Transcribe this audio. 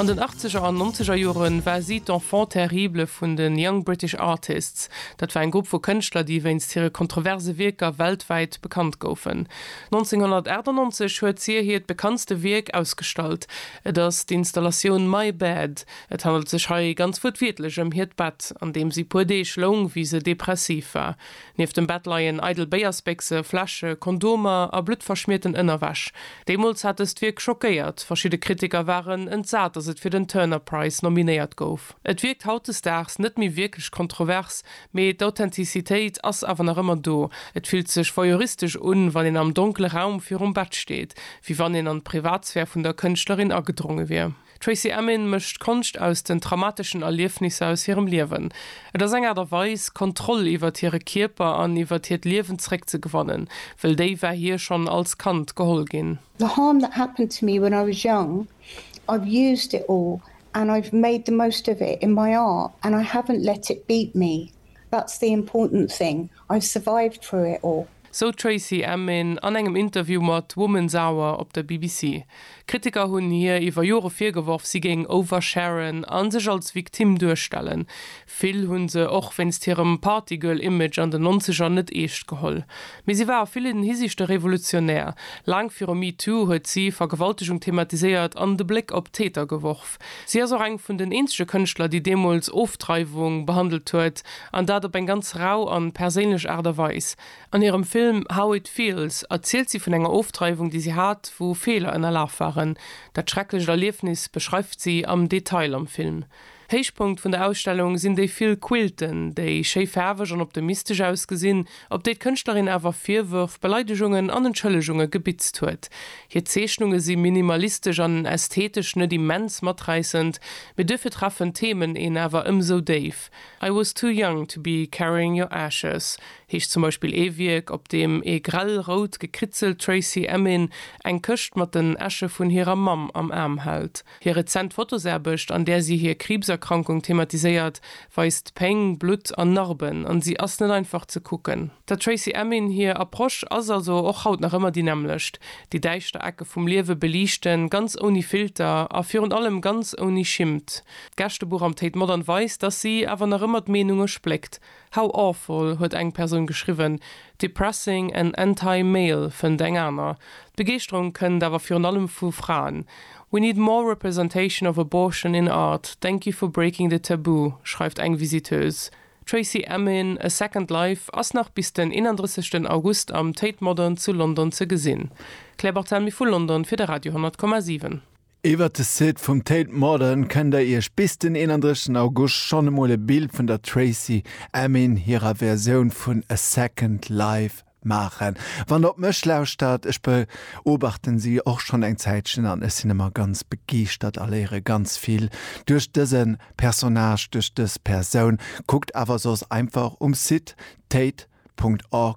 An den Achtzeger an Nonzeger Jore war si d'Enfant terrible vun de Young British Artists. Dat war eng Grupp vu Kënschtler, déi wéinst hire kontroverse Wierker weltwäit bekannt goufen. 1998 huet si hiert bekanntste Wierk ausgestallt, et ass d'Installatioun My Bed. Et handelt sech hei ganz wuertwiertlech ëm hiert Bett, an deem si puer Deeg loung, wéi se depressiv war. Nieft dem Bett leien eidel Béiersbéchse, Fläsche, Kondomer a bluttverschmierten Ënnerwäsch. Deemools hat dëst Wierk schockéiert. Verschidde Kritiker waren entsat, datt et fir den Turner Prize nominéiert gouf. Et wierkt hautdesdaags net méi wierklech kontrovers, mee d'Authentizitéit ass awer nach ëmmer do. Et fillt sech voyeuristesch un, wann een am donkele Raum virum Bett steet, wéi wann een an d'Privatsphär vun der Kënschtlerin agedronge wier. D'Tracey Emin mécht Konscht aus den traumateschen Erliefnisser aus hirem Liewen. Et ass eng Aart a Weis, Kontroll iwwert hire Kierper an iwwert hiert Liewen zeréckzegewannen, wëll déi war hir schonn als Kand geholl ginn. The harm that happened to me when I was young, I've used it all and I've made the most of it in my art and I haven't let it beat me. That's the important thing, I've survived through it all. Sou d'Tracey Emin an engem Interview mat Woman's Hour op der BBC. Kritiker hunn hir iwwer Jore virgeworf, si géing oversharen a sech als Victime duerstellen. Vill hu se och wéinst hirem Partygirl-Image an den Nonzeger net eescht geholl. Mee si war a villen Hisiichte revolutionär. Laang viru MeToo huet si Vergewaltegung thematiséiert an de Bléck op d'Täter geworf. Si ass och eng vun den eenzege Kënschtler, déi deemools Ofdreiwung behandelt huet, an dat op eng ganz rau an perséinlech Aart a Weis. An hirem Film How It Feels erzielt si vun enger Ofdreiwung, déi si hat, wou Feeler ënnerlaf waren. Dat schrecklecht Erliefnis beschreift si am Detail am Film. Héichpunkt vun der Ausstellung sinn déi vill Quilten, déi schéi faarweg an optimistesch ausgesinn. op déi d'Kënschtlerin awer Virwërf, Beleidegungen an Entschëllegunge gebitzt huet. Hir Zeechnunge si minimalistesch an ästhetesch net immens maträissend, mee duerfir treffen d'Themen een awer ëmsou déif. I was too young to be carrying your ashes heescht zum Beispill ee Wierk, op deem ee grell rout gekritzelt Tracey Emin eng Këscht mat den Äsche vun hirer Mamm am Aarm hält. Hir rezent Fotosaarbecht, an där si hir Kriibserkrankung thematiséiert, weist Péng, Blutt an Narben, an si ass net einfach ze kucken. Der Tracey Emin hir Approche ass also och haut nach ëmmer déi nämmlecht, déi däischter Ecke vum Liewe beliichten, ganz ouni Filter a virun allem ganz ouni Schimmt. D'Gästebuch am Tate Modern weist, dass si awer nach ëmmer d'Meenunge spléckt. How awful huet eng Persoun geschriwwen, depressing and anti-male fënnt eng aner. D'Begeeschterung kënnt awer virun allem vu Fraen. We need more representation of abortion in art, thank you for breaking the taboo, schreift eng Visiteuse. Tracey Emin, A Second Life ass nach bis den 31 August am Tate Modern zu London ze gesinn. Claire Barthelmy vu London fir de Radio 10,7. Iwwert de Site vum Tate Modern kënnt der iech bis den 31 August schonn emol e Bild vun der Tracey Emin hirer Versioun vun A Second Life maachen. Wann der op mech lauschtert, ech beobachten si och schonn eng Zäitchen an ech sinn ëmmer ganz begeeschtert a léiere ganz vill duerch dëse Personnage, duerch dës Persoun. Kuckt awer soss einfach um Site tate.org.uk.